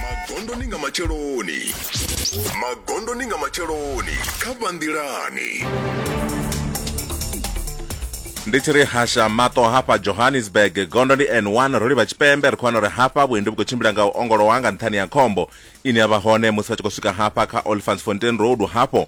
magondoni nga matsheloni magondoni nga matsheloni kha vhanḓilani ndi tshi ri hasha mato hafha johannesburg gondo ndi n1 ro livha tshipembe ri khou wana uri hafha vhuendi vhu khou tshimbila nga u ongolowa nga nṱhani ya khombo ine ya vha hone musi vha tshi khou swika hafha kha olifants fontain road hafho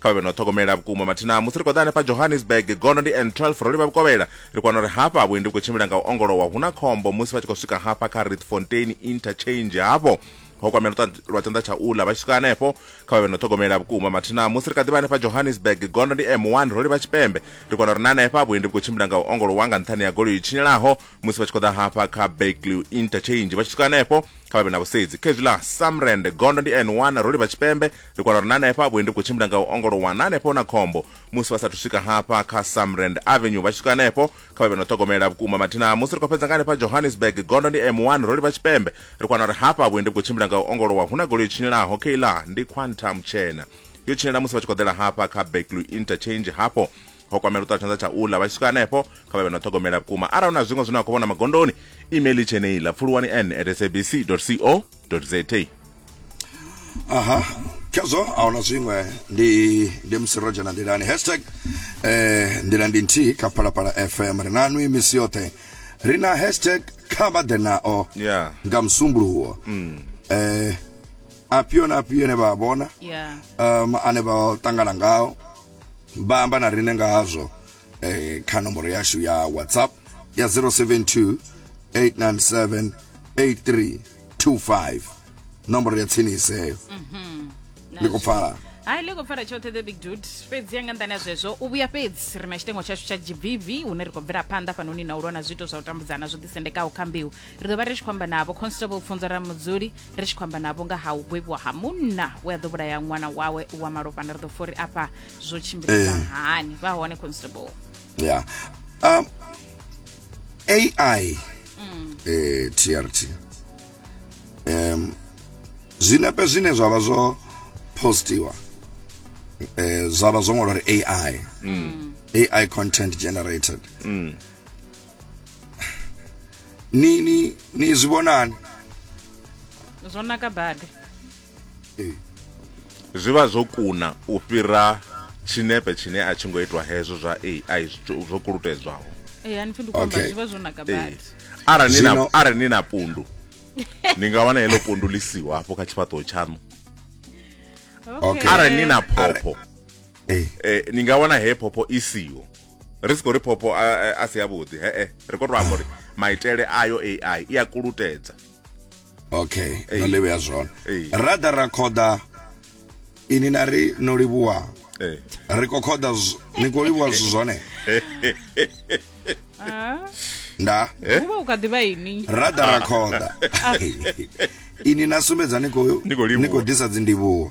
kha vha vhe no ṱhogomela vhukuma mathina musi ri khou ḓa hanefha johannesburg gondo ndi n 12 ro livha vhukovhela ri kwana uri hafha vhuendi vhu khou tshimbila nga u ongolowa hu na khombo musi vha tshi khou swika hafha kha ritfontein interchange hafho ho kwamela lwa tshanḓa tsha uḽa vha tshi swika hanefho kha vha vhe no ṱhogomela vhukuma mathina musi ri kha ḓivha hanefha johannesburg gondo ndi m1 ro livha tshipembe ri kwana uri na hanefha vhuendi vhu khou tshimbila nga u ongolowa nga nṱhani ya goloi tshinyelaho musi vha tshi khou ḓa hafha kha backlew interchange vha tshi swika hanefho kha vha vhe na vhusedzi kha hezwi ḽa samrand gondo ndi n one ro livha tshipembe ri kwana uri na hanefha vhuendi vhu khou tshimbila nga u ongolowa na hanefho na khombo musi vha sathu swika hafha kha samrand avenue vha tshi swika hanefho kha vha vhe na u ṱhogomela vhukuma mathina musi ri khou fhedza nga hanefha johannesburg gondo ndi m one ro livha tshipembe ri kwana uri hafha vhuendi vhu khou tshimbila nga u ongolowa hu na golo yo tshinelaho kha iḽa ndi quantum tshena yo tshinela musi vha tshi khou ḓela hafha kha backlew interchange hafho ho kwamela u ṱa tshanḓa tsha uḽa vha tshi swika hanefho kha vha vhe no ṱhogomela vhukuma arali hu na zwiṅwe zwine a khou vhona magondoni email i tsheneiḽa pfuluwani n at sabc co za aha khezwo a huna zwiṅwe ndi ndi musi ro dzhena nḓilani hashtag eh nḓila ndi nthihi kha phalaphala fm ri na nwi misi yoṱhe ri na hashtag kha vha ḓe nao yeah. nga musumbuluwo mm. eh apio na apio ne vha vhona yeah. um ane vha ṱangana ngao vha amba na rine nga hazwo eh, kha nomboro yashu ya whatsapp ya 072 897 8325 nomboro ya tsinisi heyo mhm. ndi khou pfala hai ḽi khou pfala tshoṱhe the big dude fhedzi ya nga nḓani ya zwezwo u vhuya fhedzi ri na tshitengo tshashu tsha gbv hune ri khou bvela phanḓa fhanoni na u lwa na zwiito zwa u tambudzana zwo ḓisendekaho kha mbeu ri ḓo vha ri tshi khou amba na vho constable pfunzo ra mudzuli ri tshi khou amba navho nga ha u gwevhiwa ha munna we a ḓo vhulaya ṅwana wawe wa malofhana ri ḓo fori afha zwo tshimbilisa eh. hani vha hone constable ya um ai mm. eh trt um zwinepe zwine zwa vha zwo postiwa eh zwa vha zwo ṅwalwa uri ai mm. ai content generated mm. ni ni ni zwi vhonani zwo naka badi ee zwi vha zwo kuna u fhira tshinepe tshine a tshi ngo itwa hezwo zwa ai zwo kulutedzwaho ee a ni pfhi ndi khou amba zwi vha zwo naka badi arali ni na arali ni na pundu ni nga wana heḽo pundu ḽi siho hafho kha tshifhaṱuwo tshaṋu arali ni na phopho eh. eh, ni nga wana he phopho i siho ri si khou ri phopho a si yavhuḓi hee ri khou to amba uri maitele ayo ai i a kulutedza okay no livhea zwone ra ḓa ra khoḓa ini na ri no livhuwa ri khou khoḓa ni khou livhuwa zwithu zwone nda eh? uvha u kha ḓivha ini ra ḓa ra khoḓa ini na sumbedza ni khou disa dzindivhuwo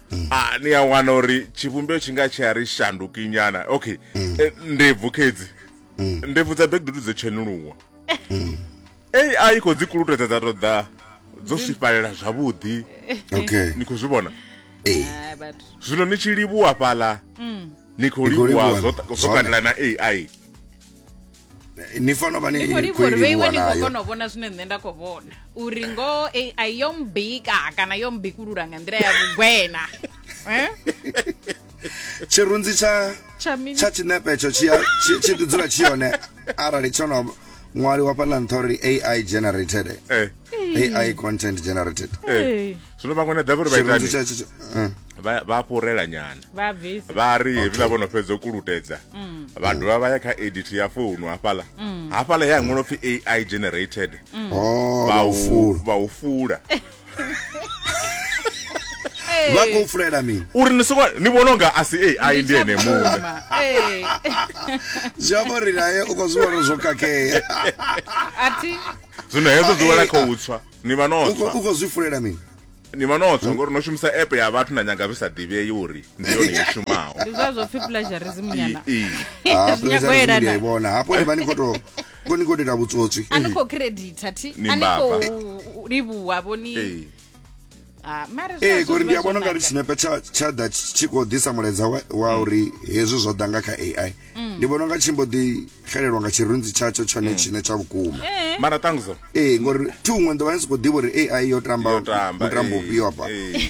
Ah, ni a wana uri tshivhumbeo tshi nga tshi a ri shanduki nyana okay eh, ndebvu khedzi ndebvu dza bekidudu dzo tshenuluwa ai i khou dzi kulutedza dza tou ḓa dzo swifhalela zwavhuḓi okay ni khou zwi vhona eh Ah, vhathu zwino ni tshi livhuwa fhaḽa ni khou Ni khou livhuwa livhuwa zwo zwo zwo- katela na ai Eh, ni fanela vha ni ni khou khou i livhuwa livhuwa ni khou nayo kona u vhona zwine nṋe nda khou vhona uri ngoho ai yo mbika kana yo mbikulula nga nḓila ya vhugwena Eh? tshirunzi tsha Tsha mini? tsha tshinepe tsho tshi a- tshi- tshi ḓi dzula tshi yone arali tsho no ṅwaliwa fhaḽa nṱha uri ai generated Eh. ai content generated Eh. zwino vhaṅwe na davhi uri tshirunzi tsha tsha eh. vha vha fhurela nyana vha bvisa vha ri hevhiḽa vho no fhedza u kulutedza mm. vha dovha vha ya kha edit ya founu hafhaḽa mm. hafhaḽa ya ṅwalo pfi ai generated mm. oh, vha u fula vha u fula vha khou fulela mini uri ni songo ni vhona unga a si ai ndi ene muṋe zwi amba uri naye u khou zwi vhona zwo kakhea zwino hezwo zwi wela kha u tswa ni vha no tswa u khou zwi funela mini ni vha no tswa ngori no shumisa app ya vhathu na nyanga zwi sa ḓivhei uri ndi yone i shumaho ndi zwa zwo pfhi plagiarism nyana ah, zwi vhona hafho ni vha ni khou tou ko ni khou dela vhutsotswi a ni khou credita thi a ni khou livhuwa vho ni ah, ee kori ndi a vhona ungari tshinepe tsha tsha ḓa tshi khou ḓisa mulaedza wa mm. uri hezwi zwo ḓa nga kha ai mm. ndi vhona unga tshi mbo ḓi xelelwa nga tshirunzi tshatsho tshone mm. tshine tsha vhukuma eh. mara tangiso ee eh, ngori thi huṅwe nḓovha ni sokou ḓivha uri ai yo tamba mutambo eh, ufhio hafha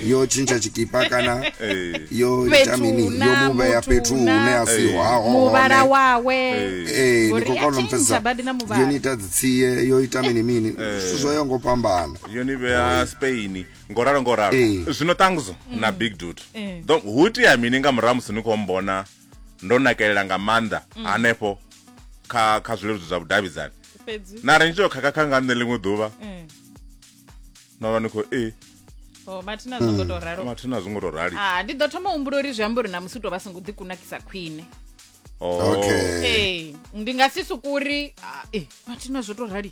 yo tshintsha tshikipa kana yo ita mini yo mu vhea fhethu hune a si hahomuvhala wawe ee ndi khou kona mpfesesa yo ni ita dzitsie yo ita mini mini zwithu zwo yo ngo fhambana yo ni vhea spain ngo ralo ngo ralo Ee. zwino ṱangzo na big dut Ee. Ḓo- hu itea mini nga murahu musi ni khou mbona ndo nakelela nga maanḓa hanefho kha kha zwileludzi zwa vhudavhidzani fhedzi na ri ni tshi khakha nga nṋe ḽiṅwe ḓuvha Mm. no vha ni khou e o mathina zwo ngo to ralo mathina zwi ngo to rali Ah, ndi ḓo thoma u humbula uri zwi amba uri na musi u tou vha songo ḓikunakisa khwine Oh. okay ee ndi nga si sukuri ah, eh, mathina zwo to rali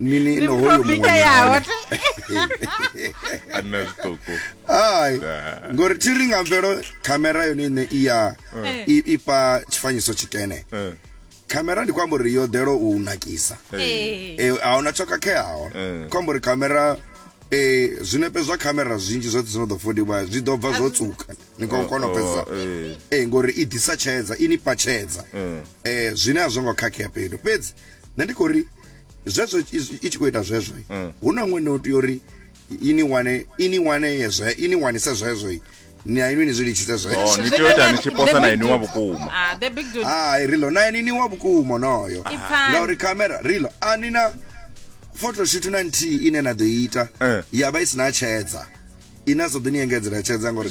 nini Ndi no hoyo muprofita muṅwe yawe. nahone. a nna zwiṱuku ai Da. ngori thi ri nga mvelo khamera yone ine i ya Eh. i- i fha tshifanyiso tshikene Eh, khamera ndi khou amba uri yo ḓelo u nakisa eh, Eh, a huna tsho khakheaho Eh. khou amba uri khamera eh, zwinepe zwa khamera zwinzhi zwoṱhe zwi no ḓo fodiwa zwi ḓo bva zwo tsuka ni khou kona u oh, pfesesa eh, Eh, ngori i ḓisa tshedza i ni fha tshedza eh. eh zwine a zwo ngo khakhea fhethu fhedzi nṋe ndi khou ri zwezwo i tshi khou ita zwezwo mm. hu na ṅwene o tea uri ini wane ini wane yezwe ini wanise zwezwo ni a inwi ni zwi litshise zwezwo oh, ni tea u ita ni tshi posa na inwi wa vhukuma ah, hai rilo na ini ni wa vhukuma onoyo ngauri kamera rilo a ni na photoshoot na nthihi ine na ḓo ita eh. ya vha i si na tshedza ine a sa ḓo ni engedzela tshedza ngauri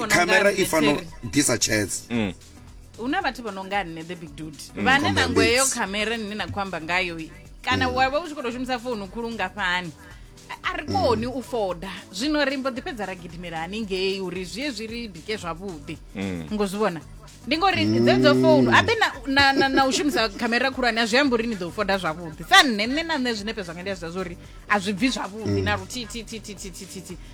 kamera i fanela ḓisa tshedza mm. hu na vhathu vha no nga nne the big dude mm, vhane na ngweyo khamera nne na khou amba ngayo kana mm. wa vha u tshi khou tou shumisa founu khulu ngafhani a ri koni u foda zwino ri mbo ḓi fhedza ra gidimela haningei uri zwi ye zwi ri bike zwavhuḓi mm. ngo zwi vhona ndi ngori dzedzo founu abe na u shumisa khamera khulwane a zwi amba uri ni ḓo foda zwavhuḓi sa nne nne na nṋe zwinepe zwanga ndi a zwa zwa uri a zwi bvi zwavhuḓi na mm. luthihi